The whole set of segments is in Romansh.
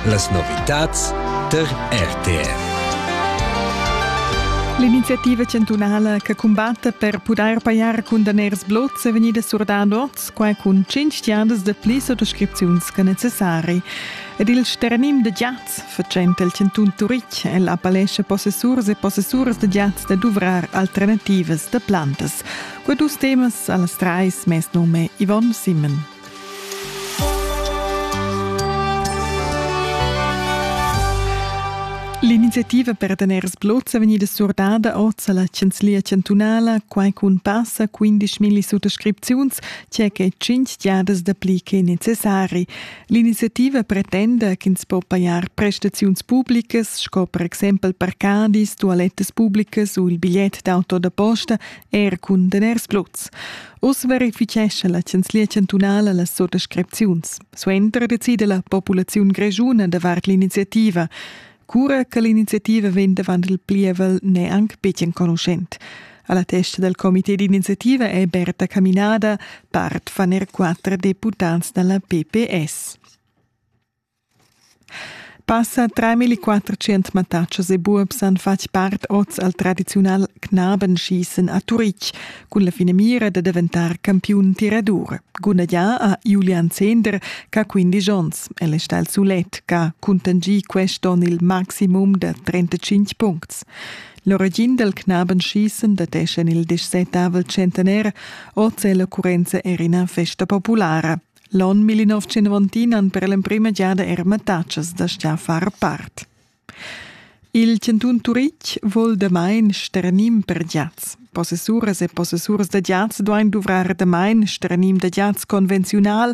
Las novitads tar RTF. L'iniziativa chantunala che cumbatta per pudair pajar cun daners blots è vegnida surdada oz, quai cun cinc giadas da pli sottoscripziuns che necessari. Ed il sternim da giats, fatschenta il chantun Turitg, el appellescha possessurs e possessuras da giats da duvrar alternativas da plantas. Quei dus temas a las trais mes nome Yvonne Simon. L'iniziativa per daners blots è vegnida surdada oz alla Chanzlia chantunala, quai cun passa 15.000 suttascripziuns, tge che tschintg giadas dapli che necessari. L'iniziativa pretenda ch'ins po pajar prestaziuns publicas, sco per exempel parcadis, tualettas publicas u il bigliet d'auto da posta, er cun daners blots. Uss verifichescha la Chanzlia chantunala las sottascripziuns. Suenter decida la populaziun grischuna davart l'iniziativa, cura che l'iniziativa vegn davant il pievel n'è anc betg enconuschent. Alla testa del comité d'iniziativa è Berta Caminada, part van er quattro deputats dalla PPS. Passa treimilliquattrocent mattatschas e buobs han fatg part oz al tradiziunal Knabenschießen a Turitg cun la finamira da daventar campiun tiradur. Gudagnà ha Julian Zehnder ch'ha quindisch onns. El è stà il sulet ch'ha cuntanschì quest onn il maximum da 35 puncts. L'origin dal Knabenschießen datescha il dissetavel centenaire. Oz è l'occurrenza er ina festa populara. L'onn 1990 han per l'emprima giada er mattatschas da sta far part. Il Cantun Turitg vol damain sternim per giats. Possessuras e possessurs da giats duain duvrar damain sternim da giats convenziunal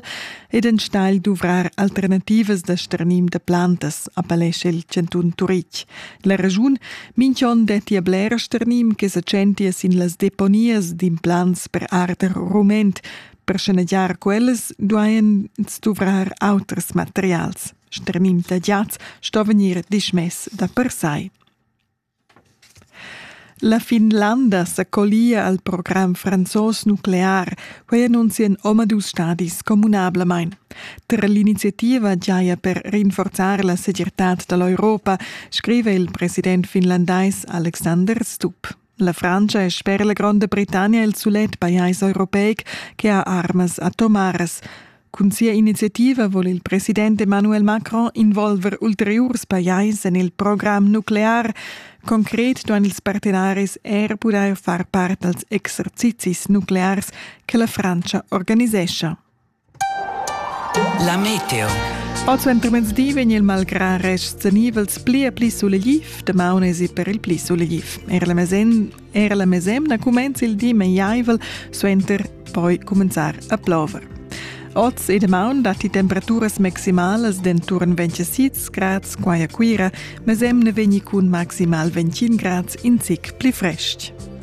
ed enstagl duvrar alternativas da sternim da plantas, appellescha il Cantun Turitg. La raschun, minch'on detti a bler sternim che sa tschentia sin las deponias d'implants per arder rument, Per schanegiar quellas duain ins duvrar auters materials. Sternim tagliats sto vegnir dismess da per sai. La Finlanda sa collia al program franzos nuclear, quei annunzien omadus stadis communablamain. Ter l'iniziativa giaia per rinforzar la segirtad dall'Europa, scrive il president finlandais Alexander Stubb. La Frantscha è sper la Gronda Britannia il sulet pajais europeic che ha armas atomaras. Cun sia iniziativa vul il president Emmanuel Macron involver ulteriurs pajais en il program nuclear. Concret duan ils partenaris er pudair far part als exercizis nuclears che la Frantscha organisescha. La meteo. Oz entomezdi vegn il malgrà rests nivels pli e pli sulegliv, damaun esi per il pli sulegliv. Era la, mesemna, era la mesemna cumenza il di meiaivel, suenter poi cumenzar a plover. Oz e damaun datti temperaturas maximalas d'enturn 26 grads qua a Cuira, mesemna vegni cun maximal 21 grads in zic pli frestg.